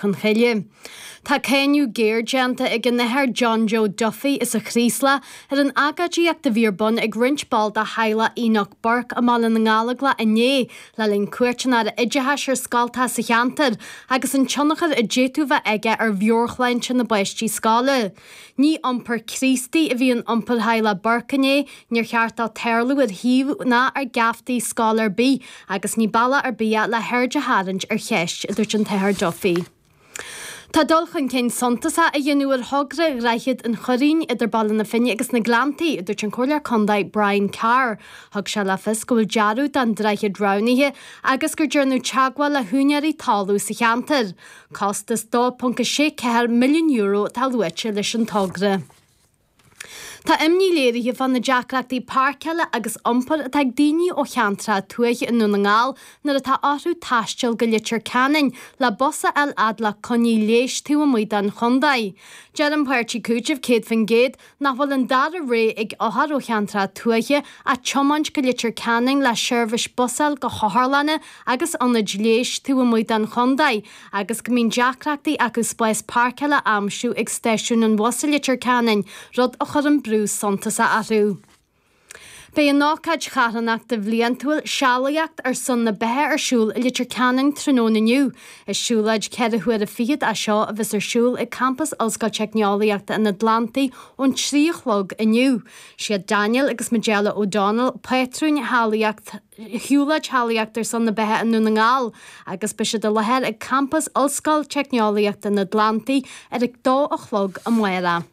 chun cille. Tá cáineadh géar déanta ag an Athair John Joe Duffy as an Chraoslach ar an agóidíocht a bhí ar bun ag roinnt ball de theaghlach Enoch Burke i mBaile na nGallaghlaigh inné le linn cuairt an Aire Oideachais ar scoilteacha sa cheantar agus an tionchar a d'fhéadfadh bheith aige ar mheabhairshláinte na bpáistí scoile. Ní iompar Críostaí a bhí in iompar theaghlaigh Burke inné, níor cheart dó tarlú ar shuíomh ná ar gheaftaí scoil ar bith agus ní bealach ar bith é le haird a tharraingt ar cheist, a dúirt an tAthair Duffy. Tá dul chun cinn suntasach á dhéanamh ar thogra Dhroichead an Churraoin idir Baile na Finne agus na Gleanntaí, a dúirt an Comhairleoir Contae Brian Carr. Thug sé le fios go bhfuil dearadh don droichead roghnaithe agus go ndearnadh teagmháil le húinéirí talún sa cheantar. Costas €2.64 milliún atá luaite leis an togra. Tá imní léirithe fá na deacrachtaí páirceála agus iompair atá ag daoine ó cheantracha tuaithe i nDún na nGall nuair atá orthu taisteal go Leitir Ceanainn le bus a fháil fhad le coinní leighis taobh amuigh den chontae. Deir an páirtí Cúiteamh 100% nach bhfuil an dara rogha ag othair ó cheantracha tuaithe ach tiomáint go Leitir Ceanainn le seirbhís bus a fháil go hotharlanna agus ionaid leighis taobh amuigh den chontae agus go mbíonn deacrachtaí acu spás páirceáil a aimsiú ag Stáisiún an Bhus i Leitir Ceanainn, rud a chuireann brú suntasach orthu. Beidh an ócáid charthanachta bhliantúil 'Sealaíocht ar son na Beatha' ar siúl i Leitir Ceanainn tráthnóna inniu. Is siúlóid ceithre huaire fichead é seo a bheas ar siúl ag campas Ollscoil Teicneolaíochta an Atlantaigh ón trí a chlog inniu. Siad Daniel agus Majella O'Donnell pátrúin Shealaíocht Shiúlóid Shealaíocht ar son na Beatha i nDún na nGall agus beidh siad i láthair ag campas Ollscoil Teicneolaíochta an Atlantaigh ar a dó a chlog amárach.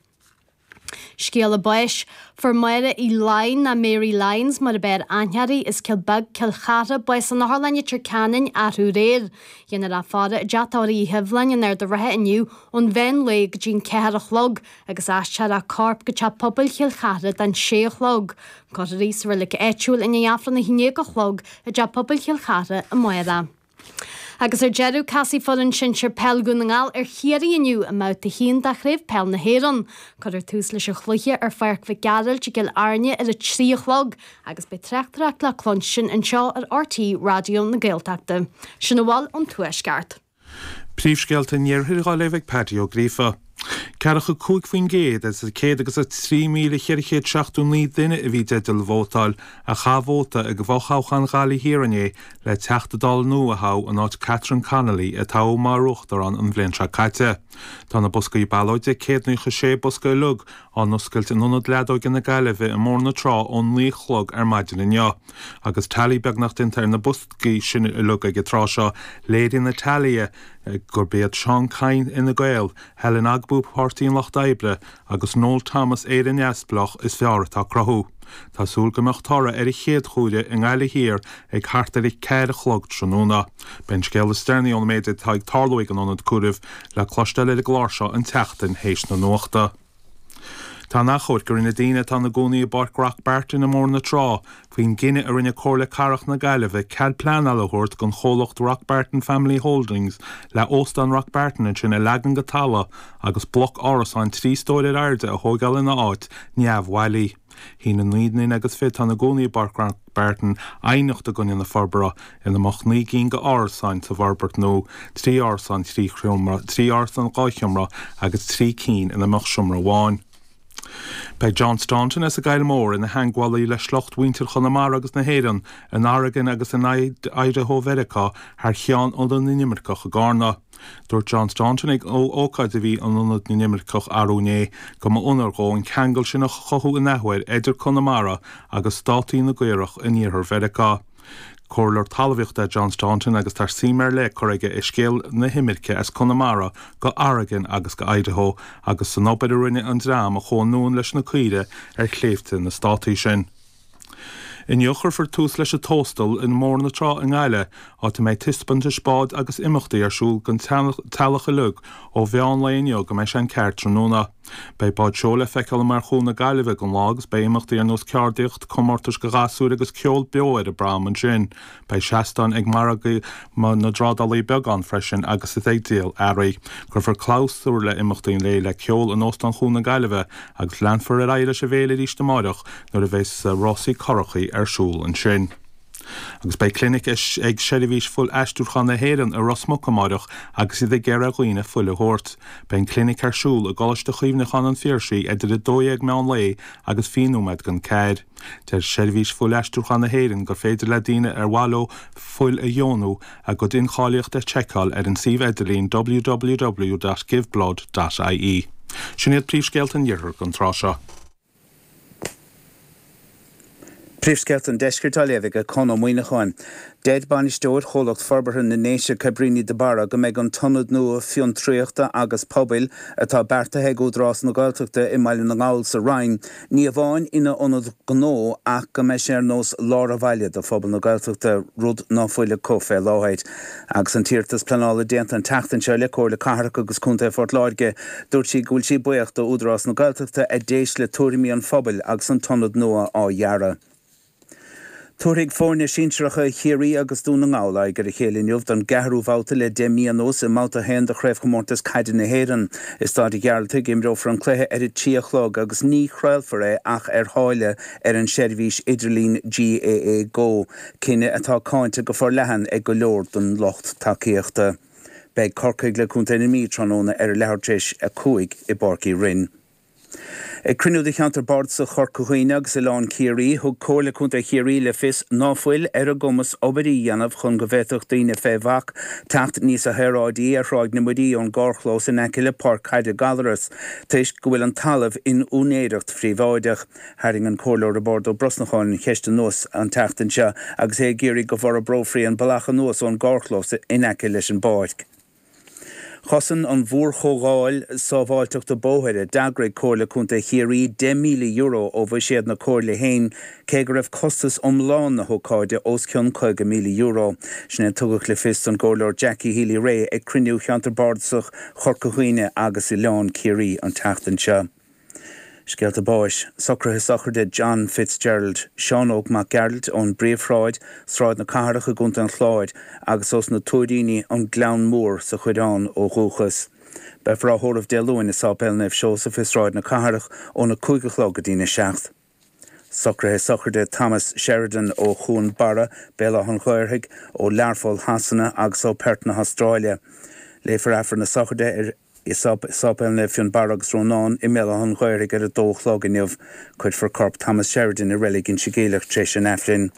Scéala báis. Fuair Máire Uí Laighin, nó Mary Lyons mar ab fhearr aithne uirthi, as Cill Bheag, Cill Chartha, bás san Otharlann i Leitir Ceanainn arú aréir. Déanfar í a fhaire i dteach tórraimh Uí Shoibhleáin in Ard an Rátha inniu ón mheán lae go dtí'n ceathair a chlog agus aistreofar a corp go Teach Pobail Chill Chartha don sé a chlog. Cuirfear í sa roilic áitiúil i ndiaidh Aifreann a haon déag a chlog i dTeach Pobail Chill Chartha amárach. Agus ar deireadh, casfaidh foireann sinsir peil Dhún na nGall ar Chiarraí inniu i mBabhta 1 de Chraobh Peil na hÉireann. Cuirfear tús leis an chluiche ar Pháirc Mhic Gearailt i gCill Airne ar a trí a chlog agus beidh tráchtaireacht le cluinstin anseo ar RTÉ Raidió na Gaeltachta. Sin a bhfuil ón Tuaisceart. Príomhscéalta an Iarthair dhaoibh ag Pádraic Ó Gríofa. Ceathracha a cúig faoin gcéad, as an 103,479 duine a bhí i dteideal vótáil, a chaith vóta i bhfothoghchán Ghaillimh Thiar inné le Teachta Dála nua a thoghadh in áit Catherine Connolly a toghadh mar Uachtarán an bhliain seo caite. Tá na boscaí ballóide, céad naocha sé bosca uilig, á n-oscailt in Ionad Leadóige na Gaillimhe i mBóthar na Trá ón naoi a chlog ar maidin inniu. Agus teailí beagnach déanta ar na boscaí sin uilig ag an tráth seo, léiríonn na teailithe gurb iad Seán Kyne Fhine Gael, Helen Ogbu Páirtí an Lucht Oibre agus Noel Thomas Éire Neamhspleách is fearr atá ag cruthú. Tá súil go mbeidh toradh ar a chéad chomhaireamh i nGaillimh Thiar ag thart ar a ceathair a chlog tráthnóna. Beidh an scéal is deireanaí ón méid atá ag tarlú ag an ionad comhairimh le cloisteáil ar an gclár seo an tseachtain théis na nuachta. Tá an achomharc a rinne daoine atá ina gcónaí i bPáirc Rockbarton i mBóthar na Trá faoin gcinneadh a rinne Comhairle Cathrach na Gaillimhe cead pleanála a thabhairt don chomhlacht Rockbarton Family Holdings le Óstán Rockbarton ansin a leagan go talamh agus bloc árasáin trí stóir ar airde a thógáil ina áit neamhbhailí. Shínigh naoi nduine agus fiche atá ina gcónaí i bPáirc Rockbarton aighneacht i gcoinne na forbartha, ina mbeadh naoi gcinn d'árasáin sa bhforbairt nua, trí árasán thrí sheomra, trí árasán dhá sheomra agus trí cinn ina mbeadh seomra amháin. Beidh John Staunton as an gCoill Mhór ina theagmhálaí le sliocht mhuintir Chonamara agus na hÉireann in Oregon agus in Idaho Mheiriceá thar cheann Ionad na nImirceach i gCarna. Dúirt John Staunton ag ócáid a bhí in Ionad na nImirceach arú inné go mba onóir dhó an ceangal sin a chothú in athuair idir Conamara agus Státaí na gCaorach in Iarthar Mheiriceá. Comhairleoir talmhaíochta é John Staunton agus tá suim ar leith curtha aige i scéal na himirce as Conamara go Oregon agus go Idaho agus san obair a rinne an dream a chuaigh anonn leis na caoirigh ar shléibhte na Státaí sin. Inniu chuirfear tús leis an Tóstal i mBóthar na Trá i nGaillimh, áit a mbeidh taispeántais bád agus imeachtaí ar siúl don teaghlach uilig ó mheán lae inniu go mbeidh sé an ceathair tráthnóna. Beidh báid seoil le feiceáil amuigh ar Chuan na Gaillimhe ag an lá agus beidh imeachtaí ar nós ceardaíocht, comórtais do ghasúir agus ceol beo ar an bProm ansin. Beidh seastáin ag margadh na dtrádálaithe beaga ann freisin agus iad ag díol earraí. Cuirfear clabhsúr le imeachtaí an lae le ceol in Óstán Chuan na Gaillimhe agus leanfar ar aghaidh leis an bhféile arís amáireach nuair a bheas rásaí currachaí ar siúl ansin. Agus beidh clinic ag Seirbhís Fuilaistriúcháin na hÉireann i Ros Muc amáireach agus iad ag iarraidh ar dhaoine fuil a thabhairt. Beidh an clinic ar siúl i gColáiste Chuimhneacháin an Phiarsaigh idir 12:00 meán lae agus 20 nóiméad don 4:00. Deir Seirbhís Fuilaistriúcháin na hÉireann gur féidir le daoine ar mhaith leo fuil a dheonú a gcuid incháilíochta a sheiceáil ar an suíomh idirlín www.giveblood.ie. Sin iad príomhscéalta an Iarthair don tráth seo. Príomhscéalta an Deiscirt á léamh ag Conn Ó Muíneacháin. Deir Bainisteoir Chomhlacht Forbartha na nDéise Cabrini de Barra go mbeidh an t-ionad nua fiontraíochta agus pobail atá beartaithe ag Údarás na Gaeltachta i mBaile na nGall sa Rinn ní amháin ina ionad gnó ach go mbeidh sé ar nós lár an bhaile do phobal na Gaeltachta, rud ná fuil acu fé láthair. Agus an t-iarratas pleanála déanta an tseachtain seo le Comhairle Cathrach agus Contae Phort Láirge, dúirt sí go bhfuil sí buíoch d'Údarás na Gaeltachta a d'éist le tuairimí an phobail agus an t-ionad nua á dhearadh. Tabharfaidh foirne sinsearacha Chiarraí agus Dún na nGall aghaidh ar a chéile inniu don gceathrú bhabhta le deich mí anuas i mBabhta 1 de Chraobhchomórtas Caide na hÉireann. I Stáid Ghearaltaigh a imreofar an cluiche ar a trí a chlog agus ní chraolfar é ach ar tháille ar an seirbhís idirlín GAA Go, cinneadh atá cáinte go forleathan ag go leor den lucht tacaíochta. Beidh Corcaigh le Contae na Mí tráthnóna ar a leathuair tar éis a cúig i bPáirc Uí Rinn. Ag cruinniú de cheantar bardasach Chorca Dhuibhne agus Oileán Ciarraí, thug Comhairle Contae Chiarraí le fios ná fuil ar a gcumas obair a dhéanamh chun go bhféadfadh daoine fé bhac teacht níos saoráidí ar Thráigh na Muirí ón gcarrchlós in aice le Páirc Caide Gallarus toisc go bhfuil an talamh in úinéireacht phríobháideach. Tharraing an Comhairleoir Robert Ó Brosnacháin an cheist anuas an tseachtain seo agus é ag iarraidh go bhforbrófaí an bealach anuas ón gcarrchlós in aice leis an bpáirc. Chosain an mhórchomhdháil sábháilteachta bóthair a d'eagraigh Comhairle Contae Chiarraí €10,000 ó bhuiséad na Comhairle féin, cé go raibh costas iomlán na hócáide os cionn €50,000. Sin é a tugadh le fios don gComhairleoir Jackie Healy-Rae ag cruinniú Cheantar Bardasach Chorca Dhuibhne agus Oileán Ciarraí an tseachtain seo. Scéalta báis, socruithe sochraide John Fitzgerald, Seán Óg Mac Gearailt ón bPríomhshráid, Sráid na Cathrach i gContae an Chláir, agus ós na Tuairíní, An Gleann Mór sa Choireán ó dhúchas. Beifear á thórramh Dé Luain i Séipéal Naomh Seosamh i Sráid na Cathrach óna cúig a chlog go dtína seacht. Socruithe sochraide Thomas Sheridan ó Chuan Barra, Béal Átha'n Ghaorthaidh, ó Learpholl Shasana agus ó Perth na hAstráile. Léifear Aifreann na sochraide i Séipéal Naomh Fionnbarra agus Rónáin i mBéal Átha'n Ghaorthaidh ar a dó a chlog inniu. Cuirfear corp Thomas Sheridan i Reilig Inse Geimhleach tar éis an Aifrinn.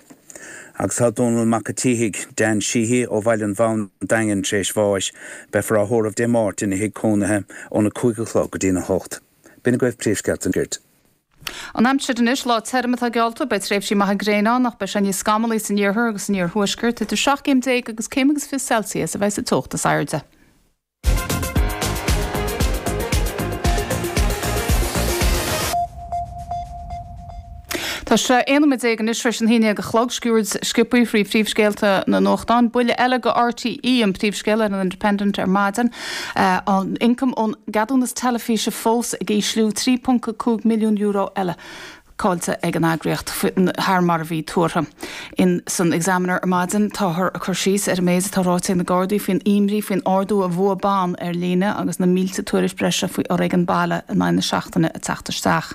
Agus tá Dónal Mac a' tSíthigh, Dan Sheehy, ó Bhaile an Bham, An Daingean, tar éis bháis. Beifear á thórramh Dé Máirt ina thigh cónaithe óna 5 a chlog go dtína 8. B'in agaibh príomhscéalta na gCuirte. An aimsir anois, lá tirim atá geallta, beidh tréimhsí maithe gréine ann ach beidh sé níos scamalaí san iarthar agus san iarthuaisceart, idir 17 céim agus céim agus fiche Celsius a bheidh sa teocht is airde. Tá sé 11 nóiméad anois tar éis a naoi a chlog, sciuird sciobtha faoi phríomhscéalta na nuachtán, buille eile go RTÉ an príomhscéal ar an Independent ar maidin. An t-ioncam ón gceadúnas teilifíse fós ag ísliú, €3.5 milliún eile caillte ag an eagraíocht, thar mar a bhí tuartha. In san Examiner ar maidin táthar ag cur síos ar an méid atá ráite ag na Gardaí faoin imní faoin ardú i bhfuath ban ar líne agus na mílte tuairisc bhreise faoi fhoréigean baile in aghaidh na seachtaine ag teacht isteach.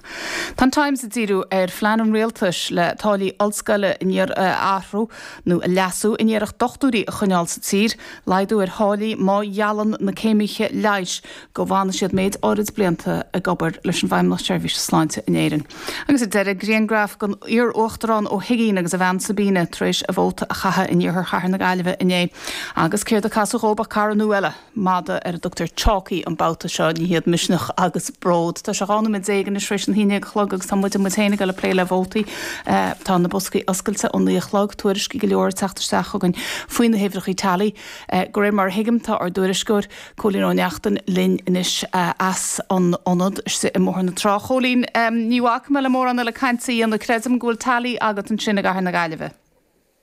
Tá an Times ag díriú ar phlean an rialtais le táillí ollscoile a athrú nó a leasú in iarracht dochtúirí a choinneáil sa tír. Laghdú ar tháillí má gheallann na céimithe leighis go bhfanfaidh siad méid áirid blianta ag obair leis an bhFeidhmeannacht Seirbhíse Sláinte in Éirinn. Agus ar deireadh, grianghraf den iar-uachtarán Ó hUigínn agus a bhean Sabina tar éis a vóta a chaitheadh in iarthar chathair na Gaillimhe inné. Agus céard a casadh dhóib ach cara nua eile, madadh ar a dtugtar Chalky an babhta seo. Ní hiad Misneach agus Bród. Tá sé 12 nóiméad anois tar éis an haon déag a chlog agus tá muid, muid féin, ag dul ag plé le vótaí. Tá na boscaí oscailte ón naoi a chlog, tuairiscí go leor ag teacht isteach chugainn faoi na huimhreachaí tally. De réir mar a thuigim, tá ár dtuairisceoir, Cóilín Ó Neachtain, linn anois as an ionad istigh i mBóthar na Trá. Chóilín, ní bhacfaidh mé le mórán eile caint a dhéanamh, creidim go bhfuil tally agat ansin i gcathair na Gaillimhe.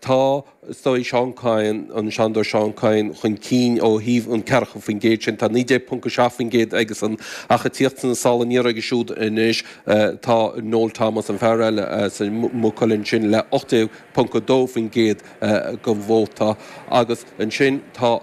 Tá, is dóigh, Seán Kyne, an Seanadóir Seán Kyne chun cinn ó thaobh an ceathracha faoin gcéad sin. Tá 19.7% aige san ach ag tíocht sna sála aniar air siúd anois tá Noel Thomas, an fear eile as Maigh Cuilinn sin, le 18.2% den vóta agus ansin tá.